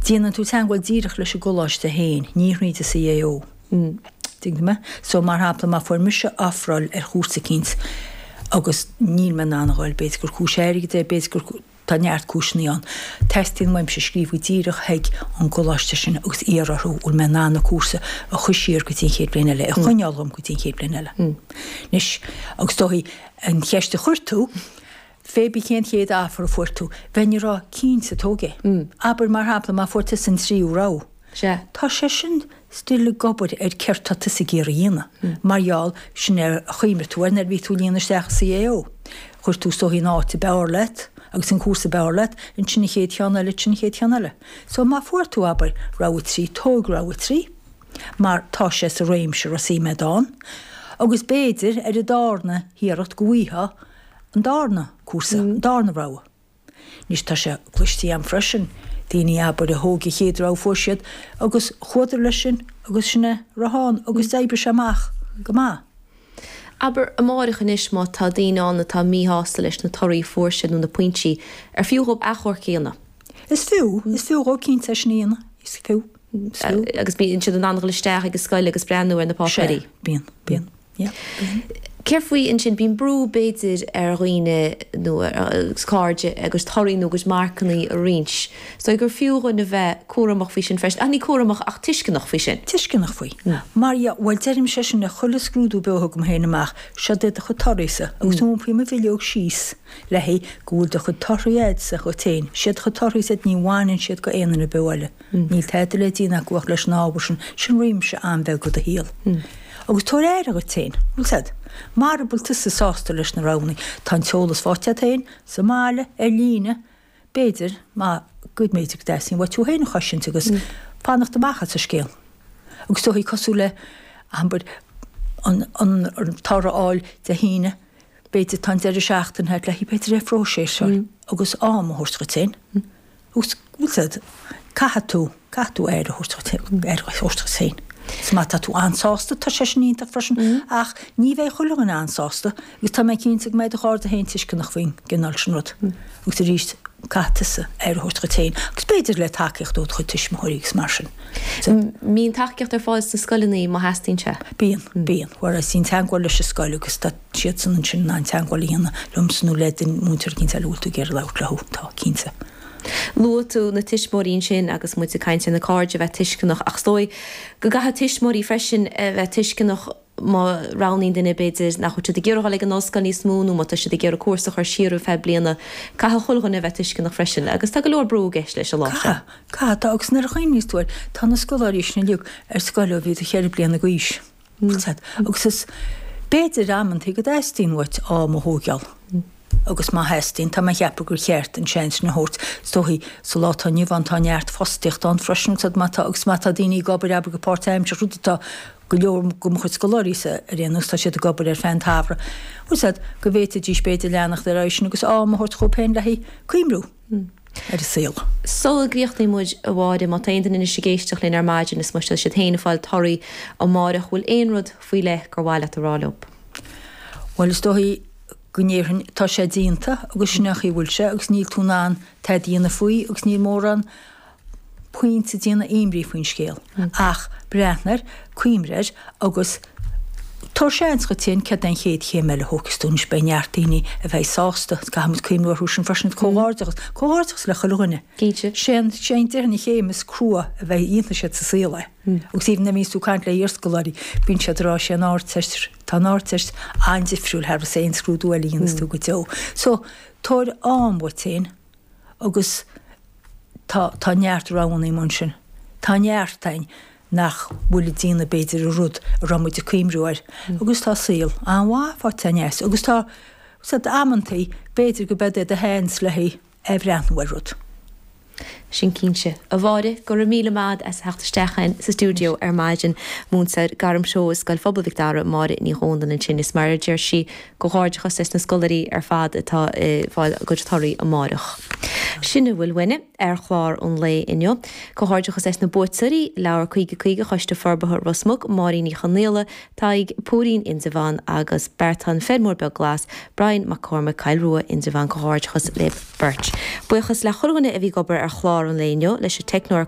Déanann tú teagmháil díreach leis an gcoláiste féin, ní thríd an gCAO. Tuigeann tú mé? So, mar shampla, má fuair mise ofráil ar chúrsa eicínt agus níl mé in ann a dhul, b'fhéidir gur cúis airgid é, b'fhéidir gur, tá neart cúiseanna ann, teastaíonn uaimse scríobh díreach chuig an gcoláiste sin agus iarraidh orthu an bhfuil mé in ann an cúrsa a chur siar go dtí an chéad bhliain eile, a choinneáil dhom go dtí an chéad bhliain eile. Anois, is dóigh, an cheist a chuir tú, pé ar bith cén chéad offer a fuair tú? Bheinn ag rá cinnte tóg é. Abair mar shampla má fuair tusa an tríú rogha. Sea, tá sé sin still ag obair ar céard tá tusa ag iarraidh a dhéanamh. Mar gheall, sin é a chuimhnigh tú air nuair a bhí tú ag líonadh isteach CAO. Chuir tú síos an áit ab fhearr leat agus an cúrsa ab fhearr leat, ansin an chéad cheann eile, ansin an chéad cheann eile. So má fuair tú, abair, rogha trí, tóg rogha trí mar tá sé sa réimse raibh suim a'd ann agus b'fhéidir ar an darna hiarracht go bhfuightheá An darna cúrsa, an darna rogha. Anois tá sé cloiste agam freisin, daoine, abair, a thóg an chéad rogha a fuair siad, agus chuadar leis sin agus sin a raibh ann agus d'oibrigh sé amach go maith. Abair, amárach anois, má tá daoine ann atá míshásta leis na torthaí a fuair siad nó na pointí, ar fiú dhóibh achomharc a dhéanamh? Is fiú, is fiú dhóibh cinnte é sin a dhéanamh, is fiú, is fiú. Agus bíonn siad in ann dul isteach ag an scoil agus breathnú ar na páipéirí. Sea, bíonn, bíonn. Céard faoi, ansin, bíonn brú, b'fhéidir, ar dhaoine, nó i measc cairde, a gcuid torthaí nó a gcuid marcanna a roinnt. Is dóigh gur fiú dhuinn a bheith cúramach faoi sin freisin, ach ní cúramach ach tuisceanach faoi sin. Tuisceanach faoi. Mar, bhuel, deirimse é sin le chuile scrúdú beo a thugaim féin amach, seo duit do chuid torthaísa, agus iompaím an bhileog síos le go bhfuil do chuid torthaí a'dsa dhuit féin, 'siad do chuid torthaísa iad, ní bhaineann siad go aon duine beo eile. Níl tada le déanamh acu ach leis an ábhar sin, sin réimse an-bheag de do shaol. Agus tabhair aire dhuit féin, bhuel, mara bhfuil tusa sásta leis na roghanna, tá an t-eolas faighte agat féin, sa mbaile, ar líne, b'fhéidir, maith go leor, b'fhéidir go dteastaíonn uait thú féin a chosaint agus fanacht amach as an scéal. Agus tá sé cosúil le, abair, an, an, an toradh a fháil Dé hAoine, b'fhéidir, tá an deireadh seachtaine a'd le, b'fhéidir, é a phróiseáil agus am a thabhairt dhuit féin. Os rud, caithfidh tú, caithfidh tú aire a thabhairt dhuit féin, aire a thabhairt dhuit féin. So má tá tú an-sásta, tá sé sin iontach freisin, ach ní bheidh chuile dhuine an-sásta, agus tá mé cinnte go mbeidh do chairde féin tuisceanach faoin gcineál sin rud. Agus arís, caithfidh tusa aire a thabhairt dhuit féin, agus b'fhéidir le tacaíocht ó do chuid tuismitheoirí agus mar sin. So. M, Bíonn tacaíocht ar fáil sna scoileanna má theastaíonn sé? Bíonn, bíonn. Déan teagmháil leis an scoil agus tá. siadsan ansin in ann teagmháil a dhéanamh liomsa nó le duine, múinteoir eicínt eile a bhfuil tú ag iarraidh labhairt leo, tá, cinnte. Luaigh tú na tuismitheoirí ansin agus muid ag caint ar na cairde a bheith tuisceanach ach is dóigh go gcaithfidh tuismitheoirí freisin a bheith tuisceanach má roghnaíonn duine, b'fhéidir, nach bhfuil siad ag iarraidh dul ag an ollscoil níos mó nó má tá siad ag iarraidh cúrsa a chur siar ar feadh bliana, caithfidh chuile dhuine a bheith tuisceanach freisin agus tá go leor brú i gceist leis an lá seo. Caithfidh, caithfidh, tá, agus nuair a chuimhníos tú air, tá na scoláirí sin uilig ar scoil ó bhí siad cheithre bliana d'aois. Agus b'fhéidir amantaí go dteastaíonn uait am a thóigeál. Agus má theastaíonn, tá mé a cheapadh gur cheart an seans sin a thabhairt. Is dóichí, sa lá atá inniu ann, tá neart fostaíocht ann freisin, agus má tá, agus má tá daoine ag obair, abair, go páirt-aimseartha, rud atá go leor de mo chuid scoláirí-sa, ar aon nós, tá siad ag obair ar feadh an tsamhraidh, go bhféadfaidís, b'fhéidir, leanacht ar aghaidh leis sin agus am a thabhairt dhóibh féin le haghaidh cuimhniú. ar an saol. Sula gcríochnóidh muid, a Mháire, má tá aon duine anois ag éisteacht linn ar maidin is má tá siad féin ag fáil torthaí amáireach, bhfuil aon rud faoi leith gur mhaith leat a rá leo? Bhuel, is dóichí go ndéarfainn, tá sé déanta agus sin an chaoi a bhfuil sé agus níl tú in ann tada a dhéanamh faoi agus níl mórán pointe déanamh imní faoin scéal. Ach breathnaigh air, cuimhnigh air, agus tabhair seans duit féin céard é an chéad chéim eile a thógfas tú, anois beidh neart daoine a bheidh sásta, caithfimid cuimhniú orthu sin freisin, comhghairdeachas, comhghairdeachas le chuile dhuine. Sé an, sé an, déarfainn an chéim is crua a bheidh, a dhéanfaidh siad sa saol é. Agus even a bhíonns tú ag caint le iarscoláirí, bíonn siad ag rá sé an Ardteist, tá an Ardteist an-difriúil thar aon scrúdú eile a dhéanfas tú go deo. So, tabhair am duit féin. Agus tá, tá neart roghanna amuigh ansin. Tá neart againn nach bhfuil ag déanamh, b'fhéidir, an rud a raibh muid ag cuimhniú air. Agus tá saol an-mhaith faighte againn as. Agus tá, sé, amantaí, b'fhéidir go mbeidh do sheans le haghaidh a bheith ag breathnú ar rud. Sin cinnte. A Mháire, go raibh míle maith a'd as a theacht isteach a'inn sa stiúideo ar maidin. Múinteoir gairmthreoir i Scoil Phobail Mhic Dara, Máire Ní Dhomhnaill ansin is mar a deir sí, Comhghairdeachas leis na scoláirí ar fad atá ag fáil a gcuid torthaí amáireach. Sin a bhfuil uainne ar chlár an lae inniu. Comhghairdeachas leis na buaiteoirí, Leabhar Caoga Caoga Choiste Forbartha Ros Muc, Máirín Uí Chonaola, Doire Fhóirín, Indreabhán agus Beartán, Feirmeoir Beag Glas, Brian Mac Cormaic, Cill Rua, Indreabhán Comhghairdeachas libh beirt. Buíochas le chuile dhuine a bhí ag obair ar chlár an lae inniu, leis an teicneoir,